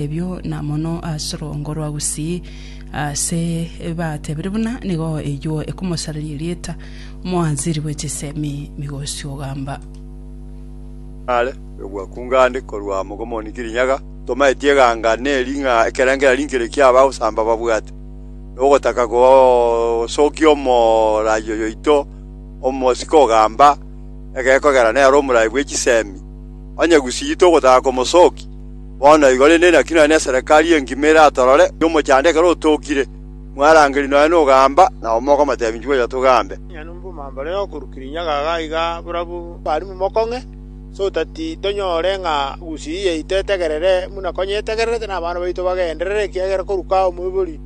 Ebio na mono ase orongo rwa gusii, ase batebirie buna nigo eyuo ekomosareria erieta, omoanziri bwe chisemi, migosi ogamba. Are nogwakunga ande korwa Mogomoni Kirinyaga, tomaeti eganga neri ng'a ekerengera rinkere kia abagosamba babwate nogotaka gosokia omorai oyoito omosike ogamba egekogera nero omorai bwe chisemi, onye gusii togotaka komosokia. Bono igo rende naki nonya neserekari engima eratorore ng'a omochando ekero otokire, mwarangeri nonya nogamba, na abamura okomoteebia, Inchuo ocha togambe. Nonya nomoboma mbare okorukire inyaga iga iga barabwo barimu mokong'e, so tati tonyore ng'a gusii yaito etegerere buna konya etegererete nabana baito bagenderere, ekiagera koruka omoibori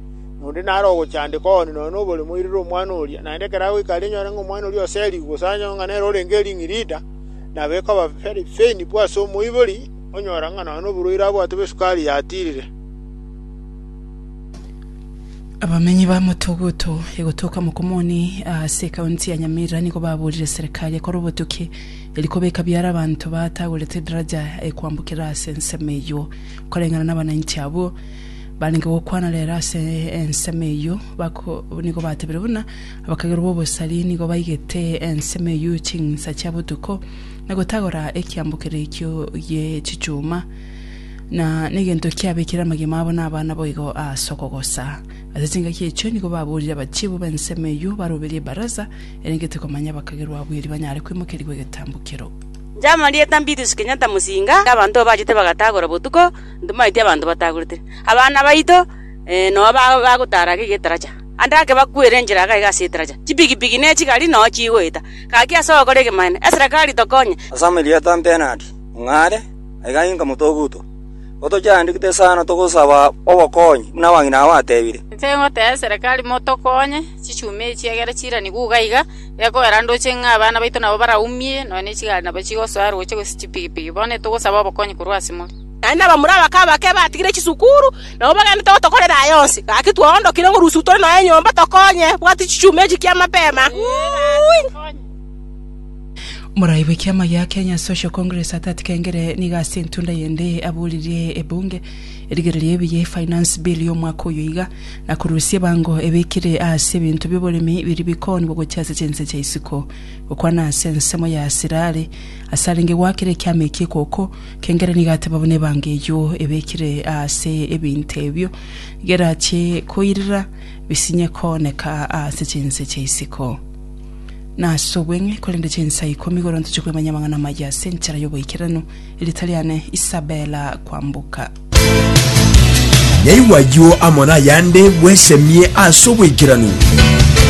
onde nare ogochandekwa ooni nonya nobore moirere omwana oria. Naende ekero agoika aria enyore ng'a omwana oria oserigwe, gose anyore ng'a nere orenge ering'irita, nabo ekoba very painful ase omoibori, Onyora ng'a nonya noborwaire abwate bw'esukari yatiirire. Abamenyi ba Motoguto egotoka Mokomoni ase ekaunti ya Nyamira nigo baborire serikali ekore obotuki eri kobeka biara abanto batagorete edaraja ekoambokera ase ensemo eyio koreng'ana nabanainchi abwo barenge gokwana rero ase ensemo eyio nigo batebire buna abakagerwa b'obosari nigo baigete ensemo eyio ching'insa chia botuko na gotagora ekiambokero ekio gie chichuma, na negento kiabekire amagima abo nabana boigo ase okogosa. Ase chingaki echio nigo baborire abachiibu b'ensemo eyio baroberie ebaraza erengete komanya abakagerwa abwo erio banyare kwemokerigwa egetambokero. Jamarieta Mbitus Kenyatta Musinga aka abanto obachete bagatagora botuko ntomaeti abanto batagorete abana baito noo bagotara ake getaracha ande ake bakwere enchera aka iga ase etaracha chipigipigi ne chigari noo chigoeta Gaki ase ogokora egemanero, Esera kari tokonye. Ase amarieta 'Benadi, Mung'are, aiga inka motoguto, gotochiandikete sana togosaba obokonyi, buna abang'ina abo batebire. Inche ngotee Esera kari motokonye, chichumi echi egere chiranigwe uga iga, gekogera ndoche ng'a abana baito nabo baraumie, nonya ne chigari nabo chigosoa aroche gose chipigipigi. Bono etogosaba obokonyi korwa ase more. Naende abamura abake abake batigire chisukuru, nabo bagendete gotokorera aya onsi. Gaki twaondokire ng'a rusiku tore noe nyomba tokonye, bwati chichuma echi kia mapema. Morai bwe kiama gia Kenya Social Congress Atati Kengere nigo ase entunda yende aboririe ebunge erigererio ebiya e finance bill ya omwaka oyo iga na korusia ebango ebekire aase ebinto bioboremi biri bikoonigwa gochia ase chinse chia isiko gokwana ase ensemo ya asirare ase arenge gwakera ekiama eki ekoko Kengera nigo ateba buna ebanga eyio ebekire aase ebinto ebio, nigo erache koirira bisinye kooneka aase chinse chia isiko. Nase obweng'e, korende chinsa ikomi igoro ntoche kwemanyia amang'ana amaya ase enchera y'oboikeranu, erita riane Isabella Kwambuka. Yaigwa ayio amo nayande, bwesemie ase oboikeranu.